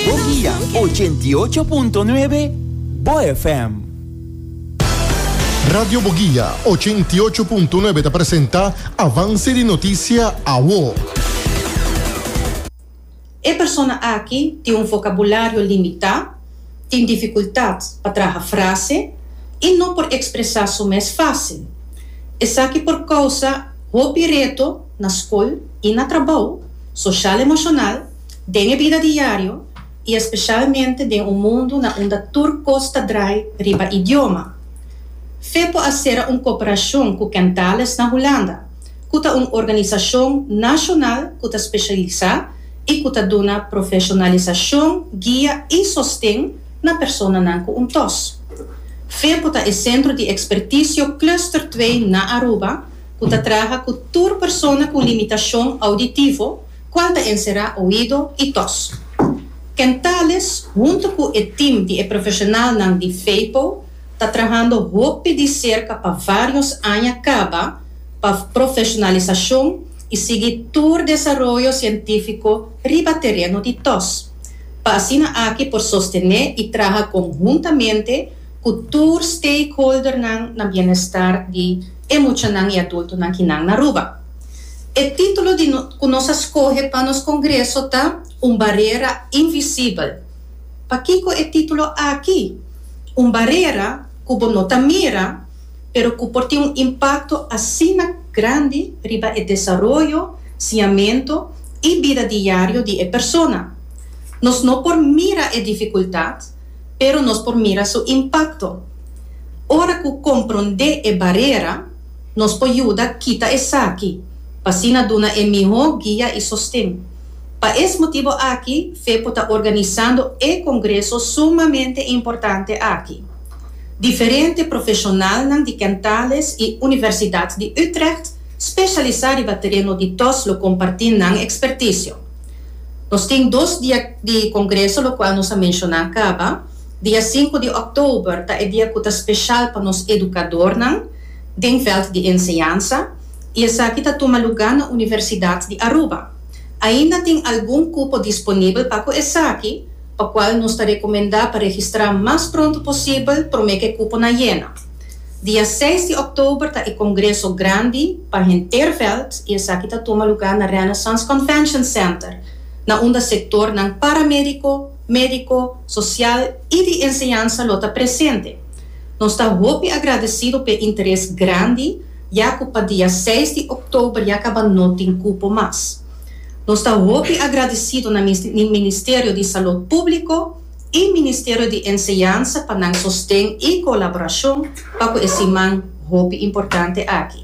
Bo guia ochenta i ocho punto nuebe Bo FM. Radio Bo Guia ochenta i ocho punto nuebe ta presenta Avance di Noticia Awo. E persona aki tin un vocabulario limitá, tin dificultat pa traha frase i no por expresa su mes fácil. Esaki por causa hopi reto na scol i na trabou, social-emocional, Den e bida diario i espeshalmente den un mundu na unda tur kos ta drai riba idioma, Fepo a sera un koperashon ku Kentales na Hulanda, ku ta un organisashon nashonal ku ta speshialisá i ku ta duna profeshonalisashon, guia i sosten na personanan ku un tos. Fepo ta e Sentro di Ekspertisio Cluster Twee na Aruba ku ta traha ku tur persona ku limitashon ouditivo, cual ta encera oido y tos. Ken Tales hunto cu e team di e profesionalnan di Feipo ta trahando hopi di cerca pa varios aña caba pa profesionalisacion y sigui tur desaroyo cientifico riba tereno di tos, pa asina aki por sostene y traha conhuntamente cu tur stakeholdernan na bienestar di e muchanan y adultonan ki nan na Aruba. E título di ku nos a skohe pa nos kongreso ta Un barera invisibel. Pakiko e título aki? Un barera ku bo no ta mira, pero ku por tin un impakto asina grandi riba e desaroyo, siñamentu i bida diario di e persona. Nos no por mira e difikultat, pero nos por mira su impakto. Ora ku komprondé e barera. Nos por yuda kita esaki pa asina duna e mihó guia i sosten. Pa es motibu aki fe por ta organisando e kongreso sumamente importante aki. Diferente profeshonalnan di Kentales i Universidat di Utrecht speshalisá riba tereno di tos lo kompartí nan ekspertisio. Nos tin dos dia di kongreso lokual nos a menshoná kaba. Dia sinku di òktober ta e dia ku ta speshal pa nos edukadornan den vèlt di enseñansa i esaki ta tuma lugá na Universidat di Aruba. Ainda tin algun kupo disponibel pa ku esaki, pa kual nos ta rekomendá pa registrá mas pronto posibel promé ku e kuponan yena. Dia seis di òktober ta e kongreso grandi pa henter vèlt i esaki ta tuma lugá na Renaissance Convention Center, na unda sektornan paramédiko, médiko, sosial i di enseñansa lo ta presente. Nos ta hopi agradesido p'e interes grandi ya ku pa dia seis di òktober ya kaba no tin kupo mas. Nos ta hopi agradesido na Ministerio di Salud Públiko i Ministerio di Enseñansa pa nan sosten i kolaborashon pa ku e siman hopi importante aki.